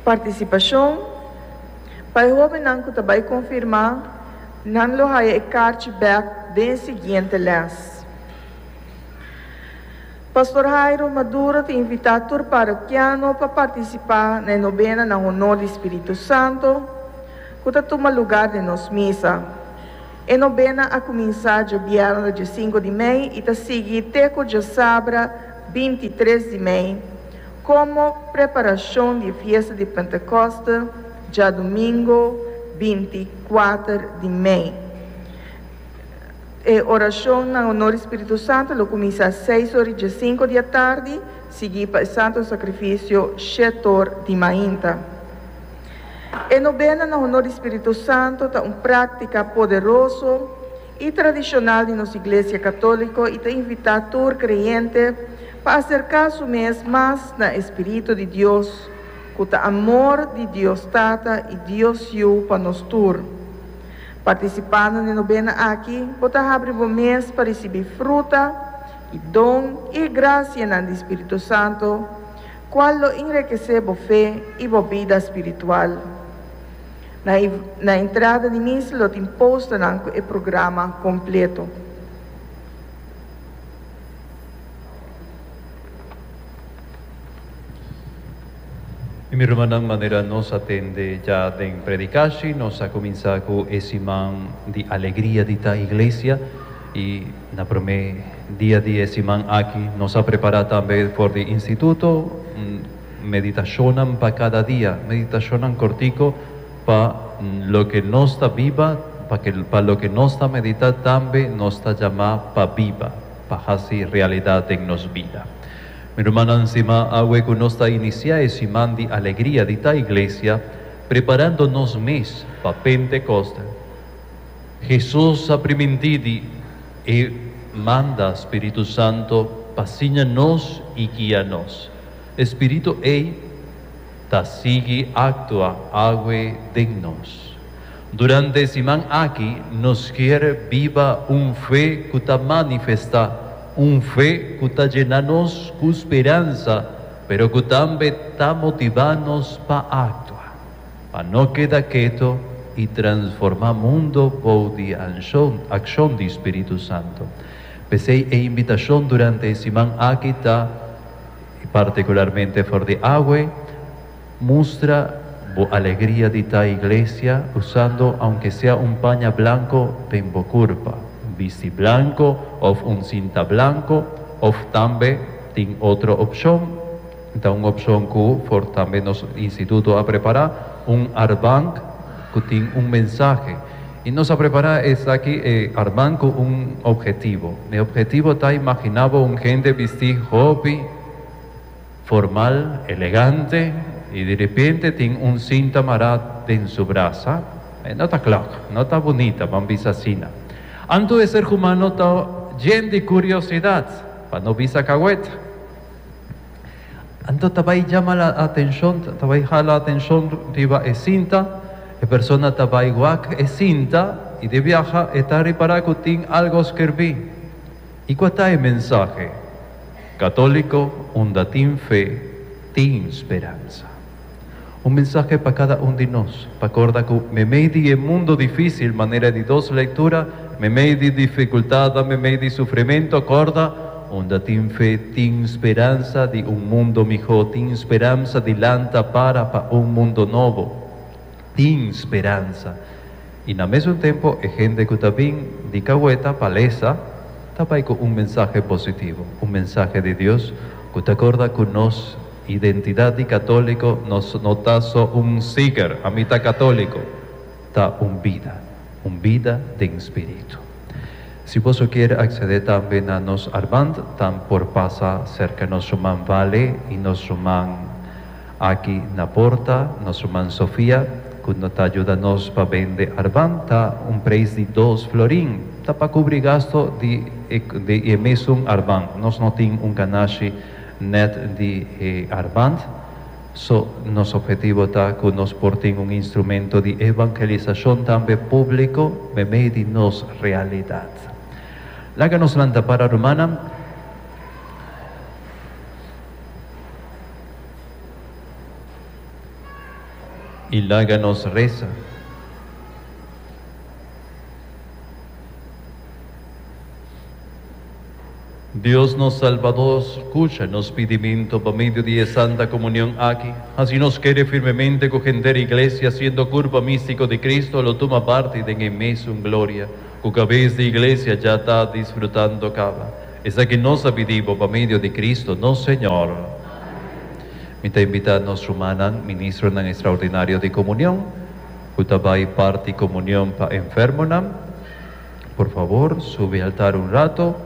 Participacion, Pa e hobennan cu ta bay confirma, nan lo haya e carchi bek den e siguiente les. Pastor Jairo Maduro ta invita tur parokiano pa participa na e nobena na honor di Spiritu Santo cu ta tuma lugar den nos misa. E nobena a cuminsa djabièrnede cinco di mei y ta sigui te cu djasabra binti tres di mei, komo preparashon di e fiesta di Pentekoste djadumingo binti kuater di mei. E orashon na onor di spiritu santu lo kuminsá seis or i djasinku di atardi, sigui pa e santu sakrifisio shet or di mainta. E nobena na onor di spiritu santu ta un práktika poderoso i tradishonal di nos Iglesia Katóliko i ta invitá tur kreyente pa aserká su mes mas na e spiritu di Dios, ku ta amor di Dios Tata i Dios Yu pa nos tur. Partisipando n'e nobena aki bo ta habri bo mes pa risibí fruta i don i e grasianan di spiritu santu, kual lo inrekesé bo fe i bo bida spiritual. Na entrada di mis lo tin posternan cu e programa completo. Mi hermannan manera nos a tende ya den predicashi, nos a cuminsa cu e siman di alegria di ta iglesia y na prome dia di e siman aki nos a prepara tambe for di instituto. Meditashonnan pa kada dia, meditashonnan kortiko pa loke nos ta biba, paske pa loke nos ta meditá tambe nos ta jamá pa biba, pa hasi realidat den nos bida. Mi rumannan, siman, awe ku nos ta inisiá e siman di alegria di ta iglesia, preparando nos mes pa Pentekost, Hesus a primintí di E manda Spiritu Santu pa siña nos i guia nos. E Spiritu ei ta sigui actua awe den nos. Durante e siman aki nos kier biba un fe cu ta manifesta, un fe cu ta djena nos cu speransa pero cu tambe ta motiva nos pa actua, pa no keda keto y transforma mundo bou di accion di Spiritu Santo. P'esey e invitacion durante e siman aki ta. i partikularmente for di awe, mustra bo alegria di ta iglesia usando aunke sea un paña blanko den bo kurpa, un bisti blanko òf un sinta blanko, òf tambe tin otro opshon, ta un opshon ku for tambe nos instituto a prepará, un arbank ku tin un mensahe. I nos a prepará esaki e arban ku un ophetivo. E ophetivo ta imaginá bo un hende bistí hopi formal, elegante i di repente tin un sinta mará den su brasa. E no ta klak, no ta bunita, ban bisa asina. Anto e ser humano ta djen di kuriosidad, pa no bisa kawèt. Anto ta bai jama la atencion, ta bai hala atencion riba e cinta. E persona ta bai wak e cinta y di biaha e ta repara cu tin algo scerbi. Y cua ta e mensahe? Catolico unda tin fe, tin speranza. Un mensahe pa kada un di nos, pa korda ku meimei di e mundo difísil, manera di dos lektura, meimei di difikultatnan, meimei di sufrimentu, korda, unda tin fe, tin speransa di un mundo mihó, tin speransa di lanta para pa un mundo nobo. Tin speransa. I na mesun tempu e hende ku ta bin di kaweta pa lesa ta bai ku un mensahe positivo, un mensahe di Dios ku ta korda ku nos identidat di katóliko no no ta so un siker, ami ta katóliko, ta un bida, un bida den spiritu. Si boso a kier aksedé tambe na nos arband, tan por pasa serka nos ruman Vale i nos ruman. Aki na porta, nos ruman Sofia, cu no ta juda nos pa bende arban, ta un prijs di dos florin. Ta pa cubri gasto di di e mesun arban. Nos no tin un canashi net di e arban, so nos objetivo ta cu nos por tin un instrumento di evangelisacion tambe publico memey di nos realidad. Laga nos lanta para, rumannan. I laga nos resa. Dios nos Salbador, scucha nos pidiminto pa medio di e Santa Comunion aki, hasi nos kere firmemente cu henter Iglesia, siendo curpa mistico di Cristo, lo tuma parti den e mesun gloria cu cabes di Iglesia dja ta disfrutando caba. Esaki nos a pidi bo pa medio di Cristo, nos Señor. Mi ta invitá nos rumannan, Ministronan Extraordinario di Komunion, ku ta bai parti komunion pa enfermonan, por favor, subi altar un rato.